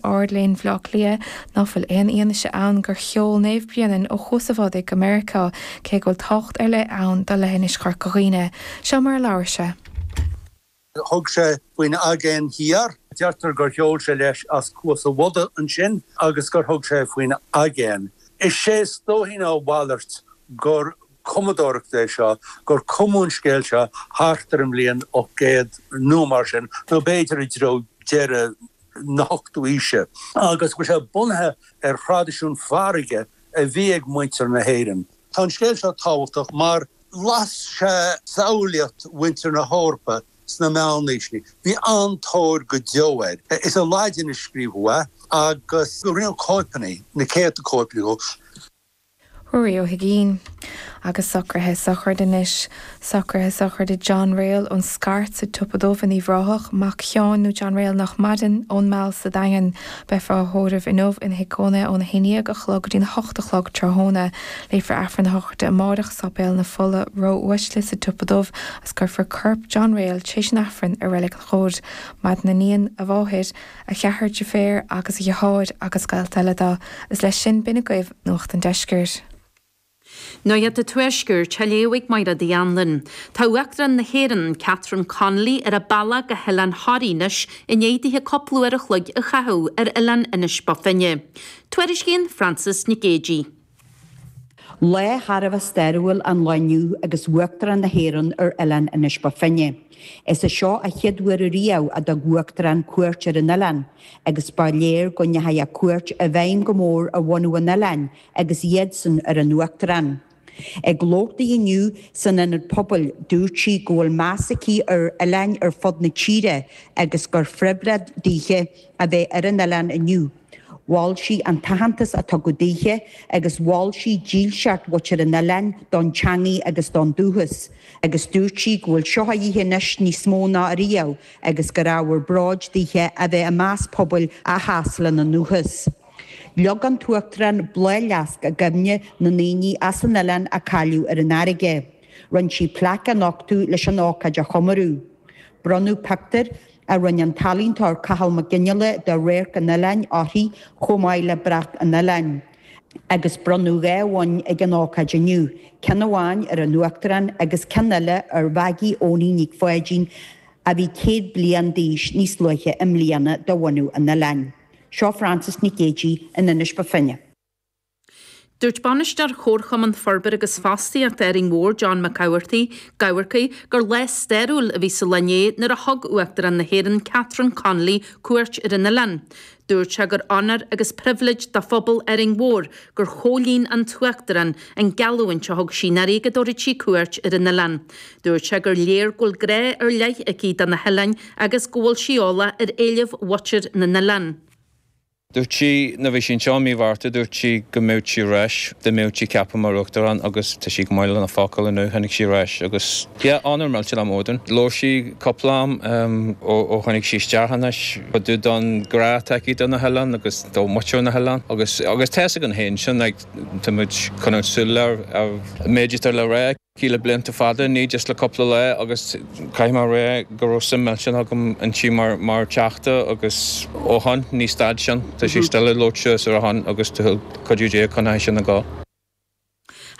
Ard-Léinn Bhaile Átha Cliath nach bhfuil aon fhianaise ann gur sheol Naomh Bréanainn ó Chuas a' Bhodaigh go Meiriceá, cé go bhfuil tábhacht ar leith ann do leithinis Chorca Dhuibhne. Seo mar a labhair sé. Thug sé faoin Aigéan Thiar. Deirtear gur sheol sé leis as Cuas a' Bhodaigh ansin agus gur thug sé faoin aigéan. Is é is dóichí ná a mhalairt gur cumadóireacht é seo, gur cumadh an scéal seo thart ar an mbliain 800 nó mar sin, nó b'fhéidir i dtreo deireadh. na hochtú aoise agus go bhfuil sé bunaithe ar thraidisiún farraige a bhí ag muintir na hÉireann. Tá an scéal seo tábhachtach mar las sé samhlaíocht mhuintir na hEorpa sna meánaoiseanna. Bhí an-tóir go deo air. Is i Laidin a scríobhadh é agus rinneadh cóipeanna, na céadta cóip dhó. Ruairí Ó hUigín, Agus socruithe sochraide anois, socruithe sochraide John Rayl ón Scairt sa tSnaidhm in Uíbh Ráthach, mac Sheáin nó John Rayl nach maireann, ón Meall sa Daingean. Beifear á thórramh inniu ina thigh cónaithe óna haon dhéag a chlog go dtí'n hocht a chlog tráthnóna. Léifear Aifreann a shochraide amáireach i Sáipéal na Fola Ró-Uaisle sa tsiopa dubh agus cuirfear corp John Rayl tréis an Aifrinn i Reilig an Chóir. Maireann a iníon, a mháthair, a cheathrar deirféar agus a dheartháir agus gaolta eile dó. Is leis sin b'in agaibh Nuacht an Deiscirt. Nuacht an Tuaiscirt á léamh ag Máire Dinny Wren. Tá Uachtarán na hÉireann, Catherine Connolly ar a bealach go hOileán Thoraí anois i ndéidh dithe cúpla uair a chloig a chaitheamh ar Oileán Inis Bó Finne. Tuairiscíonn Frances Nic Géidigh. Lá thar a bheith stairiúil an lá inniu agus Uachtarán na hÉireann ar oileán Inis Bó Finne. Is é seo an chéad uair ariamh a dtug Uachtarán cuairt ar an oileán agus ba léir go ndeachaigh a cuairt i bhfeidhm go mór ar bhunadh an oileáin agus iadsan ar an Uachtarán. Ag labhairt di inniu san Ionad Pobail, dúirt sí go bhfuil meas aici ar oileáin ar fud na tíre agus gur phriobhléid daoithe a bheith ar an oileán inniu. Mhol sí an t-aitheantas a tugadh daoithe agus mhol sí dílseacht mhuintir an oileáin don teangaidh agus don dúchas agus dúirt sí go bhfuil seo á chaitheamh anois níos mó ná ariamh agus gur ábhar bróid daoithe a bheith i measc pobail a sheas lena ndúchas. Leag an tUachtarán bláthfhleasc i gcuimhne na ndaoine as an oileán a cailleadh ar an fharraige. Rinn sí plaic a nochtadh leis an ócáid a chomóradh. Bronnadh pictiúir. a rinn an t-ealaíontóir Cathal Mac Fhionnghaile de radharc an oileáin uirthi chomh maith le brat an oileáin. agus bronnadh dhá bhonn ag an ócáid inniu, ceann amháin ar an Uachtarán agus ceann eile ar Mhaggie Eoiní Nic Pháidín a bhí céad bliain d'aois níos luaithe i mbliana de bhunadh an oileáin. Seo Frances Nic Géidigh in Inis Bó Finne. Dúirt Bainisteoir Chomharchumann Forbartha agus Fostaíochta Árainn Mhór, John McCafferty, gur lá stairiúil a bhí sa lá inné nuair a thug Uachtarán na hÉireann Catherine Connolly cuairt ar an oileán. Dúirt sé gur onóir agus pribhléid do phobal Árainn Mhór gur chomhlíon an tUachtarán an geallúint a thug sí ní ba luaithe go dtabharfadh sí cuairt ar an oileán. Dúirt sé gur léir go bhfuil grá ar leith aici do na hoileáin agus go bhfuil sí eolach ar éilimh mhuintir na n-oileán. Dúirt sí, nuair a bhí sí anseo i mí Mhárta, dúirt sí go mbeadh sí ar ais, dá mbeadh sí ceaptha mar Uachtarán agus tá sí go maith lena focal inniu, tháinig sí ar ais agus, yeah, onóir mhillteanach dúinn. Labhair sí cúpla am ó tháinig sí isteach anois, about an grá atá aici do na hoileáin agus do mhuintir na hoileáin agus tá fhios againn féin sin, like, tá muid ag coinneáil súil ar an méid atá le rá aici. aici le blianta fada, ní just le cúpla lá agus caithfidh mé a rá go raibh suim millteanach agam inti mar Teachta agus ó shoin, ní stad sin. Tá sí still ag labhairt suas ar a shon agus le cuidiú Dé coinneoidh sin ag gabháil.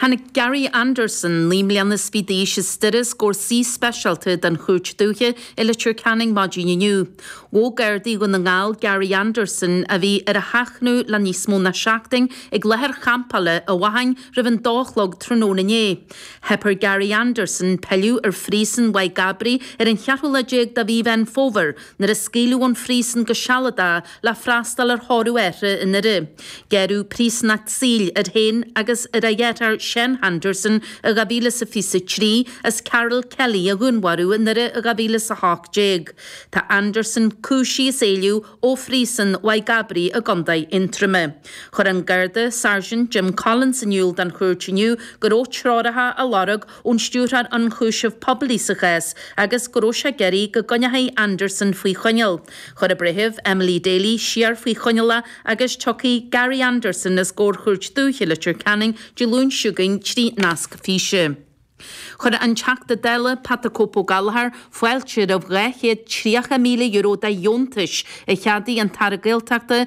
Tháinig Gary Anderson, naoi mbliana is fiche d'aois as Doire os comhair suí speisialta den Chúirt Dúiche i Leitir Ceanainn maidin inniu. Thóg Gardaí Dhún na nGall Gary Anderson a bhí ar a sheachnadh le níos mó ná seachtain ag láthair champála i Fánaid roimh an dó a chlog tráthnóna inné, theip ar Gary Anderson pilleadh ar phríosún Mhaigh gCabraí ar an cheathrú lá déag de mhí Mheán Fómhair nuair a scaoileadh é ón phríosún go sealadach le freastal ar thórramh a athar i nDoire. Gearradh príosúnacht saoil air féin agus ar a dheartháir Seán Anderson i 2023 as Karol Kelly a dhúnmharú i nDoire i 2018. Tá Anderson cúisithe as éalú ó Phríosún Mhaigh gCabraí i gContae Aontroime. Chuir an Garda Sergeant Jim Collins in iúl don chúirt inniu go raibh treoracha á lorg ón Stiúrthóir Ionchúiseamh Poiblí sa chás agus go raibh sé ag iarraidh go gcoinneofaí Anderson faoi choinneáil. Chuir an breitheamh, Emily Daly, siar faoi choinneáil é agus tiocfaidh Gary Anderson os comhair Chúirt Dúiche Leitir Ceanainn Dé Luain seo chugainn trí nasc físe. Chuir an Teachta Dála Pat 'The Cope' Gallagher fáilte roimh €230,000 de dheontais a cheadaigh an tAire Gaeltachta